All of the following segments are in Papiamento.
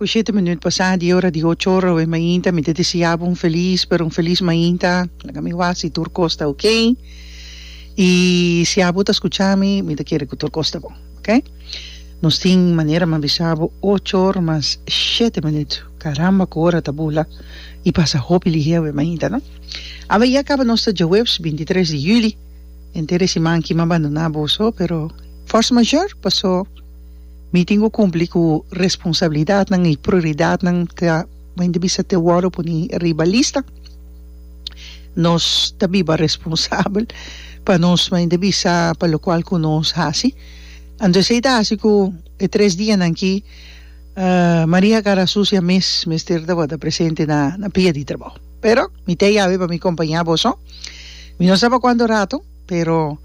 Ku shete minüt pasá di e ora di ocho ora awe mainta mi ta deseá bo un felis, pero un felis mainta. Laga mi wak si tur kos ta okey. I si abo ta skuchá mi, mi ta kere ku tur kos ta bon, oke? Nos tin manera mi a bisa bo ocho ora mas shete minüt. Karamba ku ora ta bula i pasa hopi lihé awe mainta, no? Awe ya kaba nos ta djaweps bintitres di yüli. Henter e siman ki mi a bandoná boso, pero force majeure pasó. Mi tin ku kumpli ku responsabilidatnan i prioridatnan ta baña di bisa te wòrdu pone riba lista. Nos ta biba responsabel pa nos baña di bisa pa lokual ku nos hasi. Anto esei ta hasi ku e tres dianan aki Maria kara susia mes mester tabata presente na pia di trabou. Pero mi ta yawe pa mi kompañá boso. Mi no sa pa kuantu rato. Pero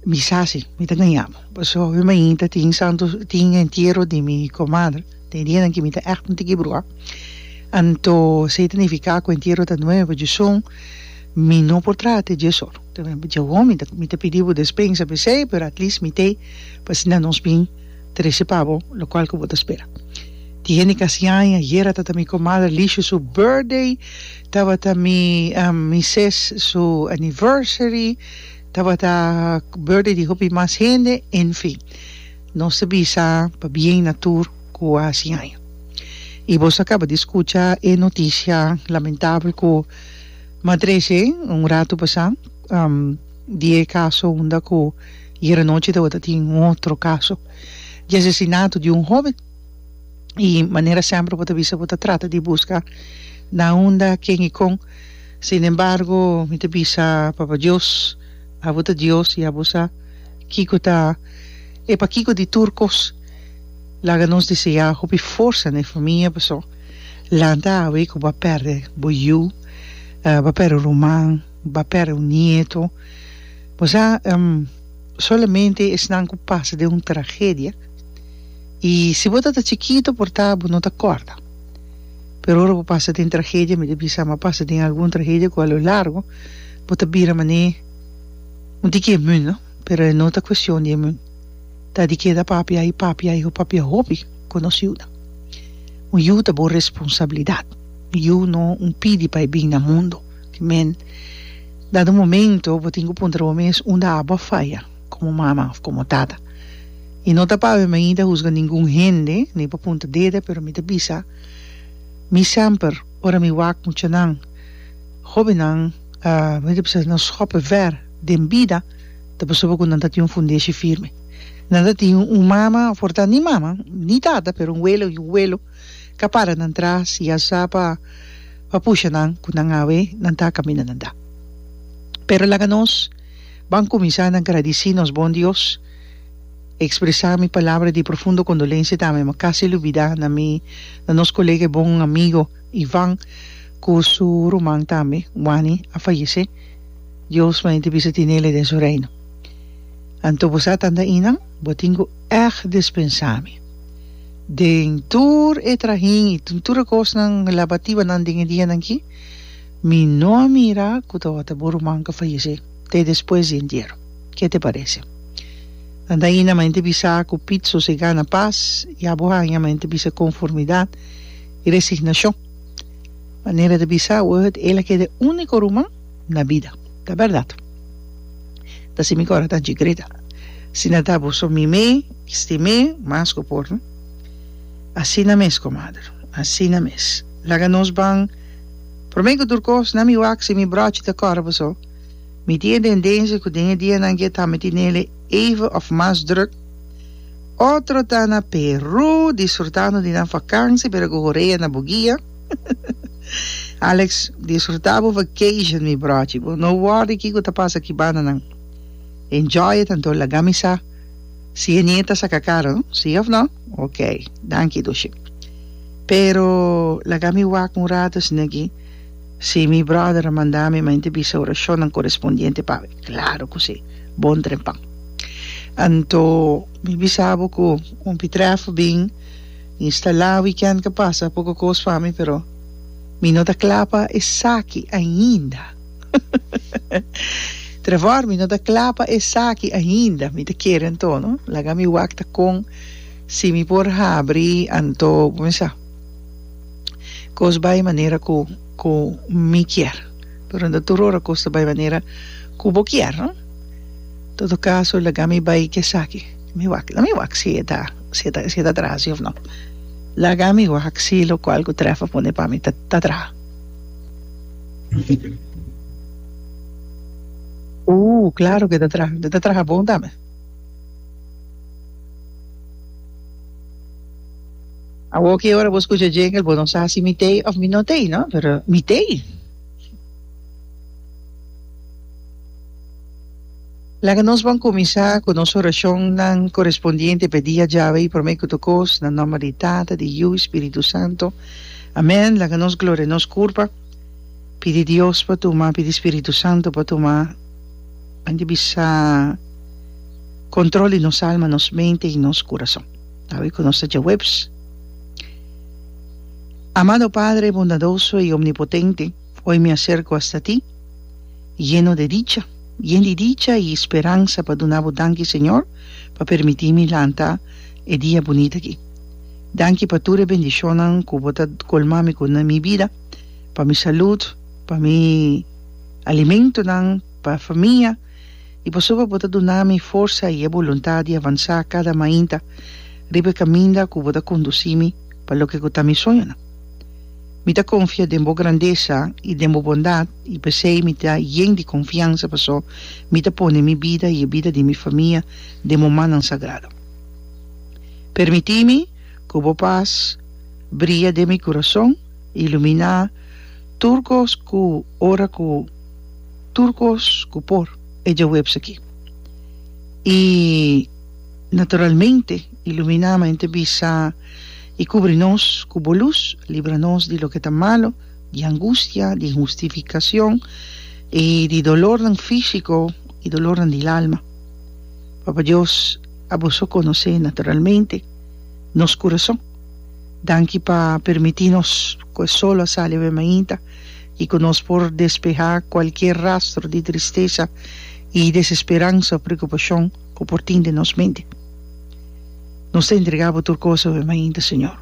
mi sa si mi ta gañaba pasobra hopi mainta tin santu tin entiero di mi komadre den e dianan ke mi ta ègt nunti ke bruha anto esei ta nifiká ku entiero ta nuevo djizon mi no por traha te dje sòru ta bem mi dje wòm mi ta pidi bo despensa p'esei pero at least mi t'ei pa asina nos bin trese pa bo lokual ku bo ta spera tin hende kasi aña yera ta ta mi komadre Lishu su birthday Tabata mi mises su anniversary, tabata birthday di hopi mas hende, en fin. Nos ta bisa pabien na tur cu a haci haña. Y boso a caba di scucha e noticia lamentabel cu m'a trece un ratu pasá di e caso unda cu yeranochi tabata tin un otro caso di asesinato di un hoben. i manera semper bo ta bisa bo ta trata di buska na unda ken i kon sin embargo mi ta bisa papa Dios abo ta Dios i abo sa kiko ta e pakiko di tur kos laga nos desea hopi forsa na e famia paso lanta awe ku bo a perde bo yu bo a perde un ruman bo a perde un nieto bo sa solamente esnan ku pasa den un tragedia. I si bo ta ta chikitu por ta bo no ta kòrda. Pero ora bo pasa den tragedia, mi ta bisa ama pasa den algun tragedia ku a lo largu bo ta bira manera un di ke mun no, pero e no ta kuestion di e mun, ta di keda papia i papia i papia hopi konos yunan. Un yu ta bo responsabilidat, un yu no un pidi pa e bin na mundu, kimen dado momento bo tin ku puntra bo mes unda abo a faya. komo mama òf komo tata. I no ta pa awe mi ta husga ningun hende ni pa punta deda pero mi ta bisa mi semper ora mi wak muchanan hobennan mi ta bisa nos hopi ver den bida ta pasobra ku nan ta tin un fundeshi firme nan ta tin un mama for ta ni mama ni tata pero un wele un welo ka para nan tras ya sa pa pa pusha nan ku nan awe nan ta a kaminda nan ta pero laga nos. Ban kuminsá na gradisí nos bon Dios, ekspresá mi palabra di profundo kondolensia ta mi makasi lubidá na mi na nos kolega i bon amigo Ivan ku su ruman tambe Wani a fayesé. Dios mai di bisa tinele den su reino. Anto bo sa tanta inan? Bo tin ku èg dispensá mi den tur e trahin i den tur e kosnan labatibanan den e dianan akí? Mi no a mira cu tabata bo ruman cu fayece te despues di entiero. Ke te parece? Nan ta ayina mente bisa cu Piet sosega na paz y abo hanja mente bisa conformidad y resignacion. Manera ta bisa word el a keda e unico ruman na bida. Ta berdad. Ta si mi cora ta anchi grita. Si na ta bo so mi me stimé mas cu por no? Asina mes comadre. Asina mes. Laga nos ban. Promé ku tur kos, na mi wak si mi bròchi ta kòrè paso, mi tin e tendensia ku den e dianan ke ta miti nele even òf mas drùk. Otro ta na Perú disfrutando di nan vakansi pero ku horea na bugia. Alex, disfrutá bo vacation mi bròchi, bo no wòrdu ki ku ta pasa ku bandanan. Enjoy e tanto lagá mi sa. Si henie ta saca caro, si of no? Ok, danki Dushi. Pero laga mi wak un rato esnegi, si mi brother a manda mi main te bisa oracionnan correspondiente pa mi. Claro cu si, bon trempa. Anto mi bisa bo cu un pitrèfo bin instala weekend ca pasa, poco cos pa mi, pero mi no ta cla pa esaki ainda. Trevor, mi no ta kla pa esaki ainda, mi ta kere anto, no? Laga mi wak ta kon si mi por habri anto bo me sa kos bai manera ku ku mi kier, pero no ta tur ora kos ta bai manera ku bo kier, no? Todo kaso laga mi bai ke esaki, mi wak la mi wak si e ta si e ta tra si of no, laga mi wak si lokual ku Trevor pone pa mi ta ta tra. Ooh claro que ta traha e ta traha bon tambe awor ki ora bo scucha jingle bo no sa si mi tey of mi no tey no pero mi tey. Laga nos bon kuminsá ku nos orashonnan korespondiente pa e dia djawe, promé ku tur kos, na nòmber di Tata, di Yu i Spiritu Santu. Amèn. Laga nos gloria nos kurpa, pidi Dios pa tuma, pidi Spiritu Santu pa tuma, anto di bisa, kontrol di nos alma, nos mente i nos kurason. Awe ku nos ta djaweps. Amado Padre bondadoso i omnipotente. Oi mi a serco hasta ti, yeno de dicha, yen di dicha y speransa pa duna bo danki Señor pa permiti mi lanta e dia bunit aki. Danki pa tur e bendicionnan cu bo ta colma mi cu na mi bida, pa mi salud, pa mi alimentonan, pa famia y pasobra bo ta duna mi forsa y e boluntad di avansa cada mainta riba e caminda cu bo ta conduci mi pa loke cu ta mi soñonan. Mi ta konfia den bo grandesa i den bo bondat, i p'esei mi ta yen di konfiansa, paso mi ta pone mi bida i e bida di mi famia den bo mannan sagrado. Permití mi ku bo pas bria den mi kurason, iluminá tur kos ku ora ku tur kos ku por e djaweps aki. I naturalmente iluminá mi ta bisa. I kubri nos ku bo lus, libra nos di loke ta malu, di angustia, di inhustifikason, i di dolornan físiko i dolornan di lalma. Papa Dios, abo so konosé naturalmente nos kurason. Danki pa permití nos ku e solo a sali awe mainta i ku nos por despehá kualkier rastro di tristesa i desesperansa o preokupashon ku por tin den nos mente. Nos ta entrega bo tur cosa hopi mainta, Señor.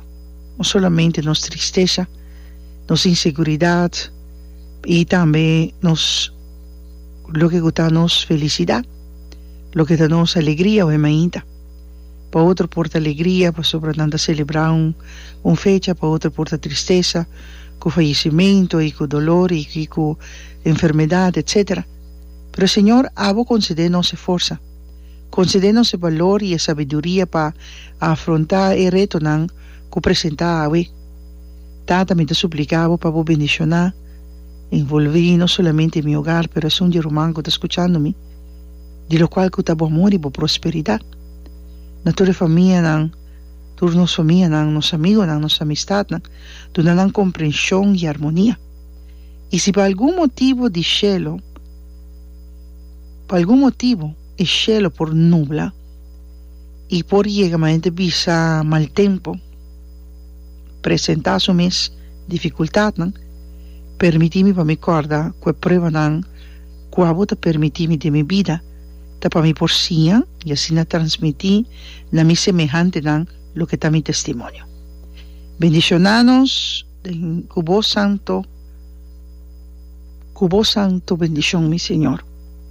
No solamente nos tristesa, nos inseguridad y tambe nos loke cu ta nos felicidad, loke ta nos alegria hopi mainta. Pa otro por ta alegria pasobra nan ta celebra un fecha, pa otro por ta tristesa cu fallecimento y cu dolor y cu enfermedad, etcetera. Pero Señor, abo concede nos e forsa. Konsede nos e balor i e sabiduria pa afrontá e retonan ku presentá awe. Tata, mi ta supliká bo pa bo bendishoná en volví no solamente mi ogar pero esun di ruman ku ta skuchando mi, di lokual ku ta bo amor i bo prosperidat. Na tur e famianan, tur nos famianan, nos amigonan, nos amistatnan, duna nan komprenshon i armonia. I si pa algun motibu di shelu, Pa algun motibu e shelo por nubla i por yega ma hende bisa mal tempu, presentá su mes difikultatnan, permití mi pa mi kòrda ku e pruebanan ku abo ta permití mi den mi bida, ta pa mi por siña i asina transmití na mi semehantenan loke ta mi testimonio. Bendishonános! Den cu bo santo, cu bo santo bendicion mi Señor,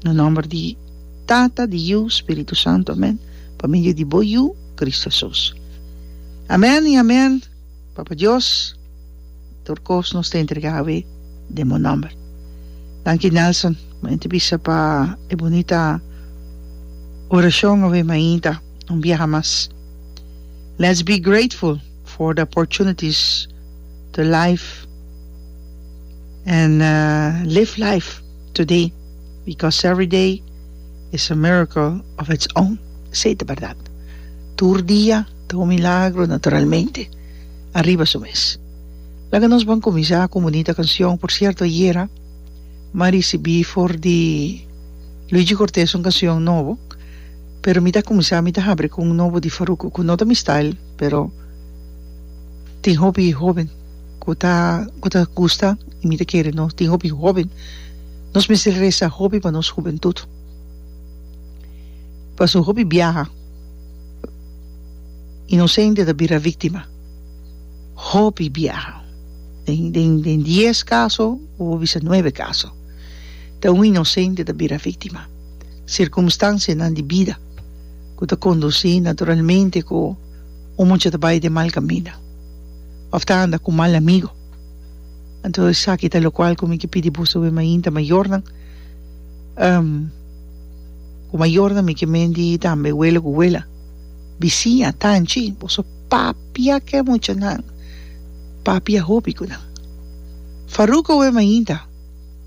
na nomber di Tata, di Yu, Spiritu Santo, amen, pa medio di bo Yu, Cristo Hesus. Amen y amen, Papa Dios, tur cos nos ta entrega awe den bo nomber. Danki Nelson, m'a enta bisa pa e bunita oracion awe mainta un biaha mas. Let's be grateful. for the opportunities to life and live life today because every day is a miracle of its own esey ta berdad tur dia ta un milagro naturalmente ariba su mes laga nos ban kuminsá ku un bunita kanshon por sierto ayera mi a risibí for di Luigi Cortes un kanshon nobo pero mi ta kuminsá mi ta habri ku un nobo di Farruko ku no ta mi style. Pero tin hopi hoben cu ta cu ta gusta y mi ta kere no tin hopi hoben nos mester resa hopi pa nos hubentud pasobra hopi biaha inocente ta bira victima hopi biaha den den den dies caso bo por bisa nuebe caso ta un inocente ta bira victima circumstancianan di bida. ku ta kondusí naturalmente ku un mucha ta bai den mal kaminda òf ta anda ku mal amigu. Anto esaki ta lokual ku mi ke pidi bos obe mainta mayornan ku mayornan mi ke menti tambe wele ku wela, bisiña, tanchi, boso papia ke muchanan, papia hopi ku nan. Faruko obe mainta.